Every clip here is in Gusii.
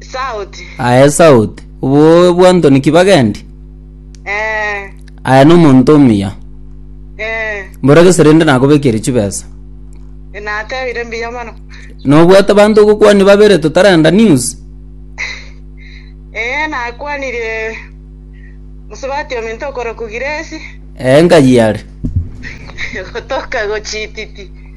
Sauti. Aye Sauti, obo bwa Antoni kibagendi? Eh. Aye nomonto omuya. Eh. Mbora gese rende nakobekeire chibesa. Natebire mbuya mono. Nobwate banto ogokwania babere totarenda news? Eh, nakwanire mosubati ominto okorokwa Giresi. Eh, nkayiare. Gotoka gochia ititi.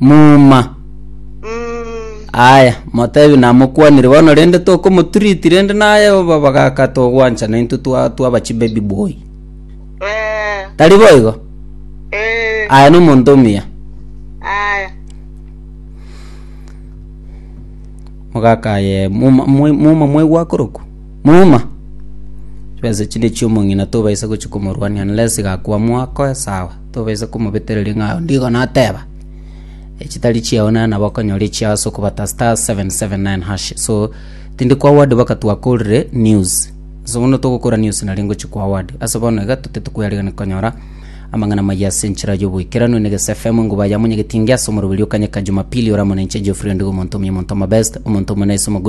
Muma. Aya, motebi namokwanire bono rende tokomotriti rende naye obo abagaka togwanchana intwe twa twaba chibaby boy. Tari boigo? Aya nomonto omuya. Mogaka aye muma mwe- muma mwaigwakoroku. Muma. Chibesa chinde chiomong'ina tobaisa gochi komorwania unless gakwamwa akoe sawa. Tobisa komobetereria ng'a ndigo nateba, eh, chitari chiao nere nabo okonyora echia ase okobata star 779 hash so tindi kwa ward baka twakorire news so bono togokora news nari ngochi kwa ward ase bono iga tote tokoyarigani konyora amang'ana maya ase enchera y'oboikeranu ene gese fm ng'o bayamonye getingi ase omoroberi okanyeka jumapili ore amo ninche geoffrey ondigo omonto omuya omonto omobest omonto omonaiso omoguda